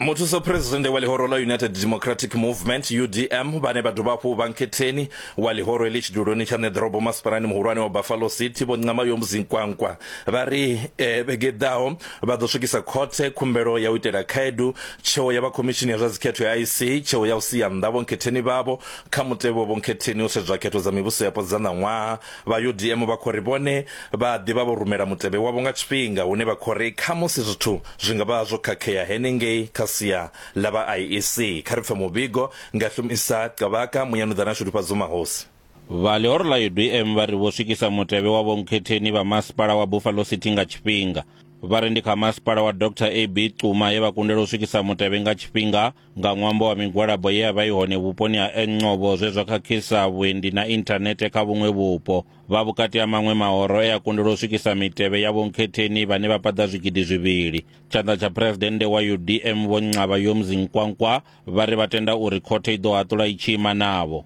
Muthusophuresidennde wa ḽihoro ḽa United Democratic Movement UDM vhane vha dovha hafhu vha nkhetheni wa ḽihoro heḽi tshiduloni tsha ṋe ḓorobo masipalani muhulwane wa Buffalo City Vho Nqamayom Zinkwankwa vha ri vhege i ḓaho vha ḓo swikisa khothe khumbelo ya u itela khaedu tsheo ya vha khomishini ya zwa dzikhetho ya IEC tsheo ya u sia nnḓa vhonkhetheni vhavho kha mutevhe wa vhonkhetheni u sedzwa khetho dza mivhusoyapo dza ṋaṅwaha Vha UDM vha khou ri vhone vha a ḓi vha vho rumela mutevhe wavho nga tshifhinga hune vha khou ri khamusi zwithu zwi nga vha zwo khakhea henengei kha sia ḽa vha IEC. Kha ri pfe muvhigo nga Hlumisa Qabaka, Muyanuḓana Shudufhadzo Mahosi. Vha ḽihoro ḽa UDM vha ri vho swikisa mutevhe wa vhonkhetheni vha masipala wa Buffalo City nga tshifhinga. Vha ri ndi kha masipala wa Doctor AB Xuma he vha kundelwa u swikisa mutevhe nga tshifhinga. nga ṅwambo wa migwalabo ye ya vha i hone vhuponi ha Encobo zwe zwa khakhisa vhuendi na inthanethe kha vhuṅwe vhupo vha vhukati ha maṅwe mahoro e a kundelwa u swikisa mitevhe ya vhonkhetheni vhane vha paḓa zwigidi zwivhili tshanḓa tsha phuresidennde wa udm vho nxaba yomzi nkwankwa vha ri vha tenda uri khothe i ḓo haṱula i tshi ima navho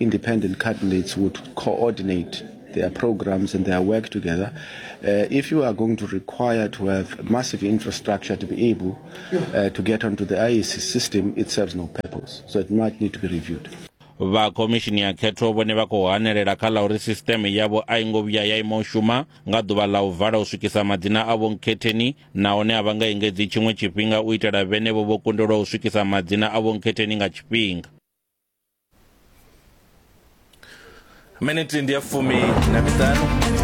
Independent candidates would coordinate their programs and their work together. Uh, if you are going to require to have massive infrastructure to be able uh, to get onto the IEC system, it serves no purpose. So it might need to be reviewed. vha khomishini ya khetho vhone vha khou hanelela kha ḽa uri sisiteme yavho a i ngo vhuya ya ima u shuma nga ḓuvha ḽa u vala u swikisa madzina a vhonkhetheni nahone a vha nga engedzi tshiṅwe tshifhinga u itela vhenevho vho kundelwa u swikisa madzina a vhonkhetheni nga tshifhinga miniti ndi ya fumi na miṱanu